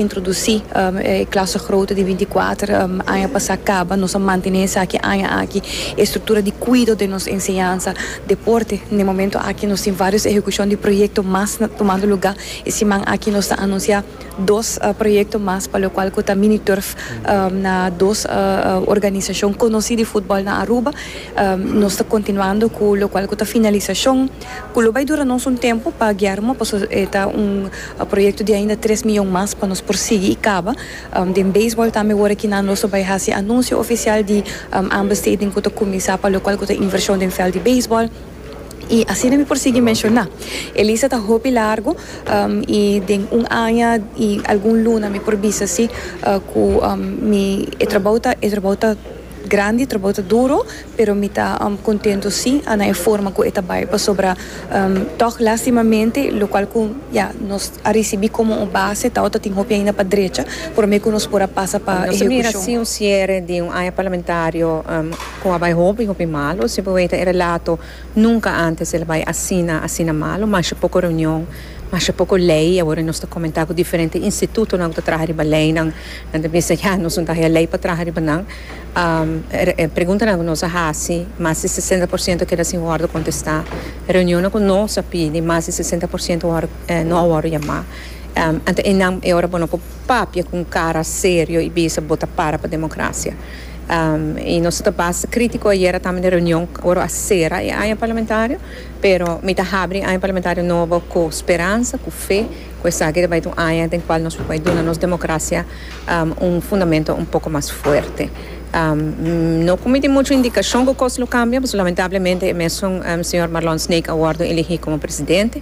Introdusí e klase grote di binti kuater aña pasá kaba. Nos a mantené esaki aña aki. E struktura di kuido den nos enseñansa, deporte. Na e momentu aki nos tin vários ehekushon di proyekto mas tumando lugá. E siman aki nos ta anunsiá dos proyekto mas pa lokual ku ta mini turf na dos organisashon konosí di futbòl na Aruba. Nos ta kontinuando ku lokual ku ta finalisashon ku lo bai dura nos un tempu pa Guillermo pasobra e ta un. E proyekto di ainda tres miyon mas pa nos por sigui i kaba. Den beisbòl tambe wor aki nan nos lo bai hasi anunsio ofisial di aanbesteding ku ta kuminsá pa lokual ku ta invershon den vèlt di beisbòl i asina mi por sigui menshoná. E lista ta hopi largu i den un aña i algun luna mi por bisa si ku mi e trabou ta e trabou ta grandi, e trabou ta duru. Pero mi ta contento si, Ana e forma cu e ta bay pasobra toch lastimamente lo cual cu ya nos a ricibi como un base tao ta tin hopi ainda pa drecha prome cu nos por a pasa pa ehecucion. Nos a mira así un ciere di un aña parlamentario cu a bay hopi hopi malo, si bo weten e relato nunca antes el a bay asina asina malo, masha poco reunion, masha poco ley, awor nos ta comenta cu diferente institutonan cu ta traha riba leynan, nan ta bisa ya nos no ta haya ley pa traha riba nan. E preguntanan ku nos a hasi, mas di sesenta por siento keda sin wòrdu kontestá. Reunionnan ku nos a pidi, mas di sesenta por siento no a wòrdu yamá. Anto einan e ora bono ku papia ku un kara serio i bisa bo ta para pa demokrasia. I nos ta basta krítiko ayera tambe den reunion ora a sera e aña parlamentario, pero mi ta habri aña parlamentario nobo ku speransa, ku fe ku esaki ta bai ta un aña den kual nos por bai duna nos demokrasia. un fundamento un poco mas fuerte. No cu mi tin mucho indicacion cu cos lo cambia, pasobra lamentablemente e mesun señor Marlon Snake a wordo eligi como presidente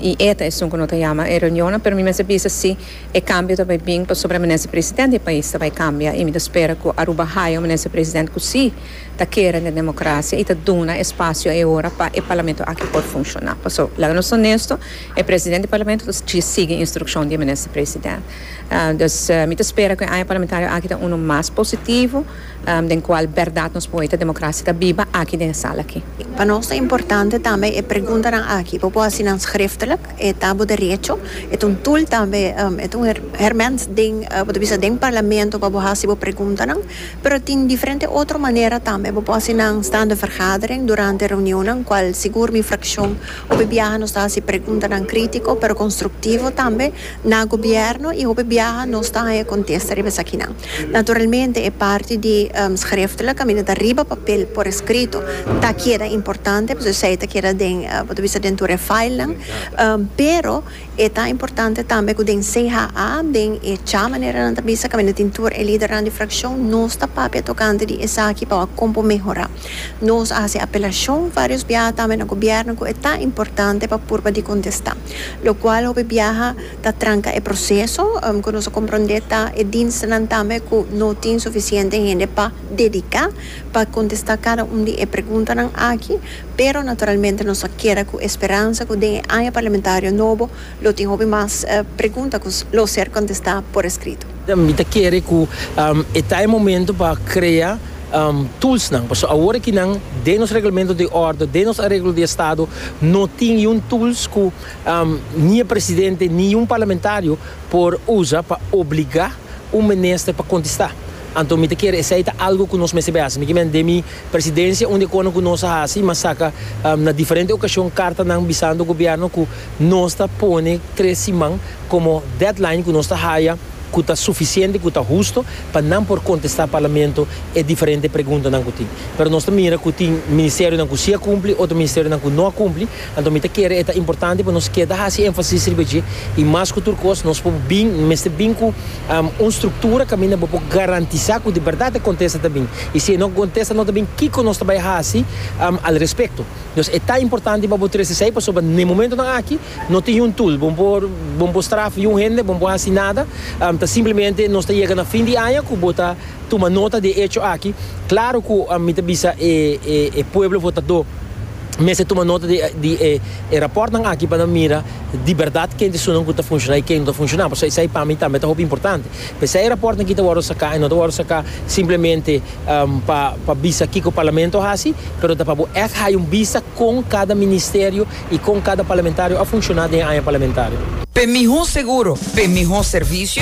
y e ta esun cu no ta yama e reunionnan, pero mi mester bisa si e cambio ta bay bin pasobra minister president di e pais ta bay cambia y mi ta spera cu Aruba haya un minister president cu si ta kere den democracia y ta duna espacio e ora pa e parlamento aki por funciona, pasobra laga nos honesto e president di parlamento ta sigui instruccion di e minister president. Dus mi ta spera cu e aña parlamentario aki ta uno mas positivo, den cual berdad nos por hoy ta democracia ta biba aki den e sala aki. Pa nos ta importante tambe e preguntanan aki. Bo por haci nan schriftelijk, e ta bo derecho. E ta un tool tambe, e ta un herment den, bo ta bisa den Parlamento pa bo haci bo preguntanan, pero tin diferente otro manera tambe. Bo por haci nan staande vergadering durante reunionnan, cual sigur mi fraccion hopi biaha nos ta haci preguntanan critico pero constructivo tambe. Na Gobierno y hopi biaha nos ta haya contesta riba esakinan. Naturalmente e parti di schriftelijk, caminda ta riba papel por escrito, ta keda importante pasobra esey ta keda den, bo ta bisa den tur e filenan, pero e ta importante tambe cu den CHA, den e cha manera nan ta bisa, caminda tin tur e lidernan di fraccion, nos ta papia tocante di esaki pa wak con por mehora. Nos a haci apelacion varios biaha tambe na Gobierno cu e ta importante pa purba di contesta. lokual hopi biaha ta tranka e proseso ku nos a komprondé ta e dienstnan tambe ku no tin sufisiente hende pa dediká pa kontestá kada un di e preguntanan aki, pero naturalmente nos ta keda ku e speransa ku den e aña parlamentario nobo lo tin hopi mas pregunta ku lo ser kontestá por eskrito. Mi ta kere ku e ta e momento pa krea tulsnan. Pasobra awor aki nan den nos reglamento di ordo, den nos areglo di estado, no tin i un tuls ku ni e presidente ni un parlamentario por usa pa obligá un minister pa kontestá. Anto mi ta kere esei ta algu ku nos mester por hasi. Mi kimen den mi presidencia unda e kono ku nos a hasi, mi a saka na diferente okashon kartanan bisando gobièrnu ku, Nos ta pone tres siman komo deadline ku nos ta haya ku ta sufisiente, ku ta husto pa nan por kontestá Parlamento e diferente preguntanan ku tin. Pero nos ta mira ku tin ministerionan ku si a kumpli, otro ministerionan ku no a kumpli. Anto mi ta kere e ta importante pa nos keda hasi énfasis riba dje i mas ku tur kos nos por bin, mester bin ku un struktura kaminda bo por garantisá ku di bèrdat e kontesta ta bin. I si e no kontesta no ta bin, kiko nos ta bai hasi al respekto? Nos e ta importante pa bo tres esei pasobra n'e momentonan aki no tin un tool bo por bo por straf un hende bo por hasi nada ta simplemente nos ta yega na fin di aña ku bo ta tuma nota di e echo aki klaro ku mi ta bisa e e pueblo votadó mester tuma nota di di e e rapòrtnan aki pa nan mira di bèrdat kentisonan ku ta funshoná i ken no ta funshoná pasobra esei pa mi tambe ta hopi importante. P'esei e rapòrtnan aki ta wòrdu saká i no ta wòrdu saká simplemente pa pa bisa kiko Parlamento a hasi, pero ta pa bo ègt haña un bista kon kada ministerio i kon kada parlamentario a funshoná den e aña parlamentario. P'e mihó seguro, p'e mihó servisio,